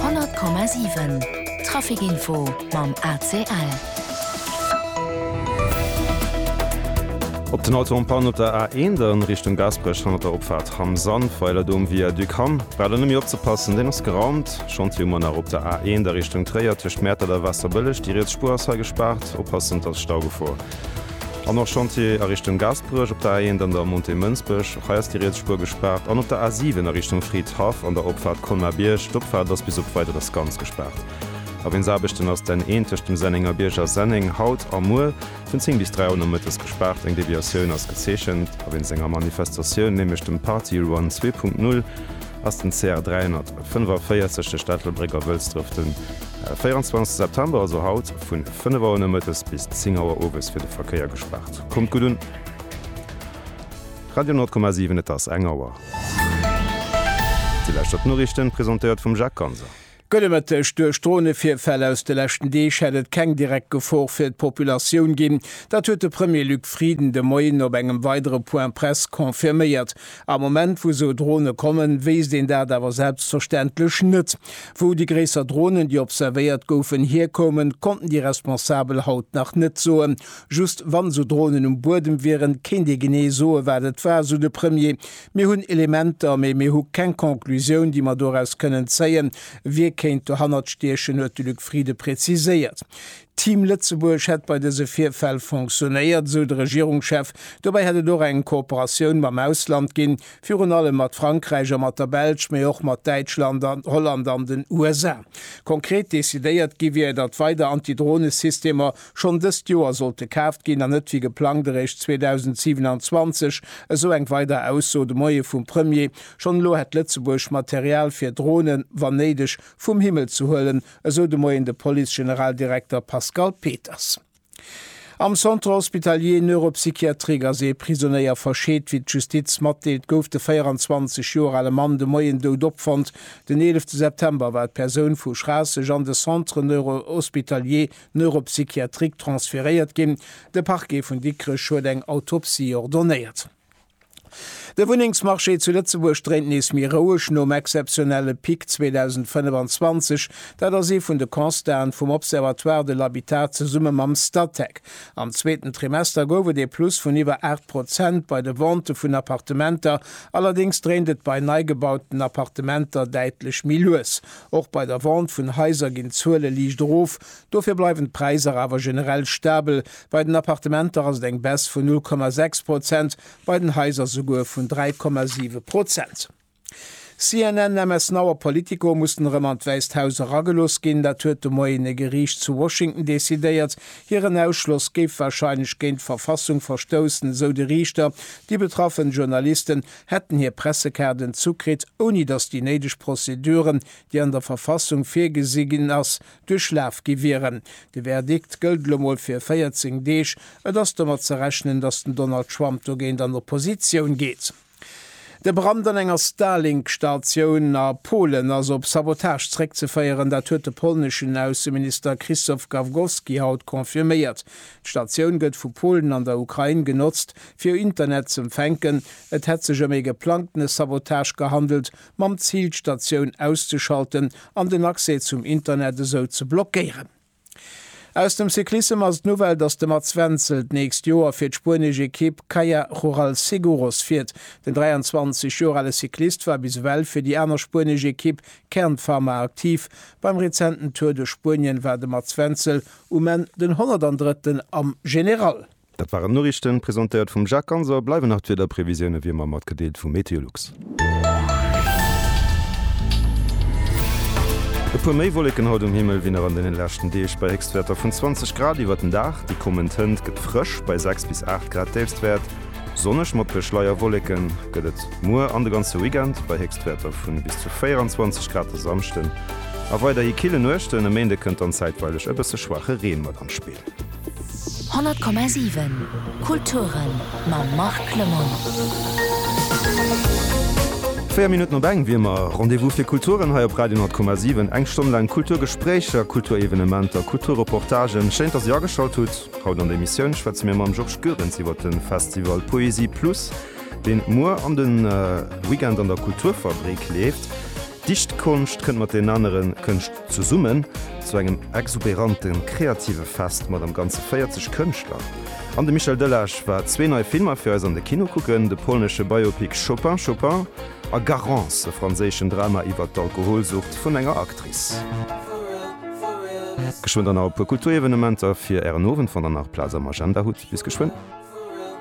100,7 Trafic Info mam ACL. Op den Autoempannen op der A1 Richtung Gaasperech hannert der Opfaart Ham Sandweiler do um Viaduc Ham braucht een nëmme opzepassen, deen ass geraumt. Chantier ëmmer nach op der A1 Richtung Tréier tëscht Mäertert a Waasserbëlleg, déi riets Spuer ass hei gespaart, oppassen et ass Staugefor. An och Chantier a Richtung Gaasperech op der A1 an der Montée Mënsbech. Och hei ass déi riets Spuer gespaart. An op der A7 a Richtung Fridhaff an der Opfaart Colmar-Bierg. D'Opfaart ass bis op Weideres ganz gespaart. Aweensaarbechten ass d'N1 tëscht dem Sennengerbierg a Senneng haut a muer vun 10 bis 3 Auer nomëttes gespaart. Eng Deviatioun ass gezeechent. Awéinst enger Manifestatioun, nämlech dem Party Run zwee Punkt Null, ass den CR 345 tëscht der Stad Lebréck a Wëlsdref de 24 September, also haut, vun. 5 Auer nomëttes bis 10 Auer owes fir de Verkéier gespaart. Kommt gutt un! Radio Nord,7 Et ass eng Auer. Déi leschter d'Noriichten, presentéiert vum Jacques Ganser. Gudde Mëtteg, Duerch Dronevirfäll aus de leschten Deeg hätt et keng direkt Gefor fir d'Populatioun ginn. Dat huet de Premier Luc Frieden de Moien op engem weidere Point-presse confirméiert. Am Moment wou sou Drone kommen, wéisst een dat awer selbstverständlech net. Wou déi gréisser Dronen, déi observéiert goufen, hierkoumen, konnten déi Responsabel haut nach net soen. Just wann sou Dronen um Buedem wieren, kéint ee genee soe wat et war, sou de Premier. Mir hunn Elementer, mee mir hu keng Conclusioun, déi mer doraus kënnen zéien, wie kéint dohannert stiechen, huet de Luc Frieden präziséiert. Team Lëtzebuerg hätt bei dëse Virfäll fonctionéiert, esou de Regierungschef. Dobäi hätt et och eng Kooperatioun mam Ausland ginn, virun allem mat Frankräich a mat der Belsch, mee och mat Däitschland an Holland an den USA. Konkret decidéiert gi wier, datt weider Antidronesystemer schonn dëst Joer sollte kaaft ginn an net wéi geplangt eréischt 2027, esou eng weider Ausso de Moie vum Premier. Schonn elo hätt Lëtzebuerg Material fir Dronen, wann néideg, vum Himmel ze huelen, esou de Moien de Police-Generaldirekter Pascal Peters. Am Centre hospitalier neuropsychiatrique ass ee Prisonéier verscheet. Wéi d'Justiz matdeelt, gouf de 24 Joer ale Mann de Moien dout opfonnt. Den eelefte September war d'Persoun vu Schraasseg an de Centre neurohospitalier neuropsychiatrique transferéiert ginn. De Parquet vun Dikrech huet eng Autopsie ordonnéiert. De Wunnengsmarché zu Lëtzebuerg dréint nees méi roueg nom exzeptionelle Pic 2025. Dat ass ee vun de Constaten vum Observatoire de l'habitat zesumme mam Statec. Am zweeten Trimester gouf et ee Plus vun iwwer 8 Prozent bei de Ventë vun Appartementer. Allerdéngs dréint et bei nei gebauten Appartementer däitlech méi lues. Och bei der Vente vun Haiser ginn d'Zuele liicht erof, Dofir bleiwen d'Präisser awer generell stabel, bei den Appartementer ass et eng Baisse vun 0,6 Prozent, bei den Haiser souguer vun 3,7 Prozent. CNN, MS Now a Politico mussten erëm an d'Wäisst Haus eragelooss ginn. Dat huet de Moien e Geriicht zu Washington decidéiert. Hiren Ausschloss géif warscheinlech géint d'Verfassung verstoussen, esou de Riichter. Déi betraffen Journalisten hätten hir Pressekaarden zukritt, ouni datt déi néideg Prozeduren, déi an der Verfassung virgesi ginn ass, duerchlaf gi wieren. De Verdikt gëllt elo mol fir 14 Deeg. Et ass domat ze rechnen, datt den Donald Trump dogéint an Oppositioun geet. De Brand an enger Starlink-Statioun a Polen ass op Sabotage zréckzeféieren. Dat huet de polneschen Ausseminister Krzysztof Gawkowski haut confirméiert. D'Statioun gëtt vu Polen an der Ukrain genotzt, fir Internet z'empfänken. Et hätt sech ëm ee geplangtene Sabotage gehandelt, mam Zil d'Statioun auszeschalten an den Accès zum Internet esou ze blockéieren. Aus dem Cyclissem ass d'Nouvelle, dass de Mats Wenzel d'nächst Joer fir d'spuenesch Ekipp Kaja Rural Seguros fiert. Den 23 Joer ale Cyclist war bis ewell fir déi aner spuenesch Ekipp Kern Pharma aktiv. Beim rezenten Tour de Spuenien war de Mats Wenzel um Enn den 103. am General. Dat waren d'Noriichten, presentéiert vum Jacques Ganser. Bleiwen nach d'Wiederprevisioune wéi ëmmer matgedeelt vu MeteoLux. E puer méi Wolleken haut um Himmel wéi nach an den leschten Deeg, bei Héchstwäerter vun 20 Grad iwwert den Dag. Déi kommend Hënt gëtt frësch, bei 6 bis 8 Grad Déifstwäert. Sonneg mat puer Schleierwolleken gëtt et muer an de ganze Weekend, bei Héchstwäerter vun bis zu 24 Grad de Samschden a weiderhi kille Nuechten. E Méinde kënnt dann zäitweileg e bësse schwaache Reen mat an d'Spill. 100,7 Kulturen mam Marc Clement. Véier Minutten op eng wier mer. Rendez-vous fir Kulturen hei op Radio 10,7. Eng Stonn laang Kulturgespréicher, Kulturevenementer, Kulturreportagen. Schéin, dass Dir ageschalt hutt. Haut an der Emissioun schwätze mir mam Georges Goerens iwwer de Festival Poésie Plus, deen muer an de Weekend an der Kulturfabrik leeft. Dichtkonscht kënnt mat den anere Kënscht. Zesummen zu engem exuberante kreative Fest mat am Ganze 40 Kënschtler. An de Michel Delage war zwee nei Filmer fir eis an de Kino kucken, de polnesche Biopic Chopin, Chopin a Garance, e franséischen Drama iwwert d'Alkoholsucht vun enger Actrice. Geschwënn dann nach e puer Kulturevenementer fir Ären Owend, wann der nach Plaz am Agenda hutt. Bis geschwënn.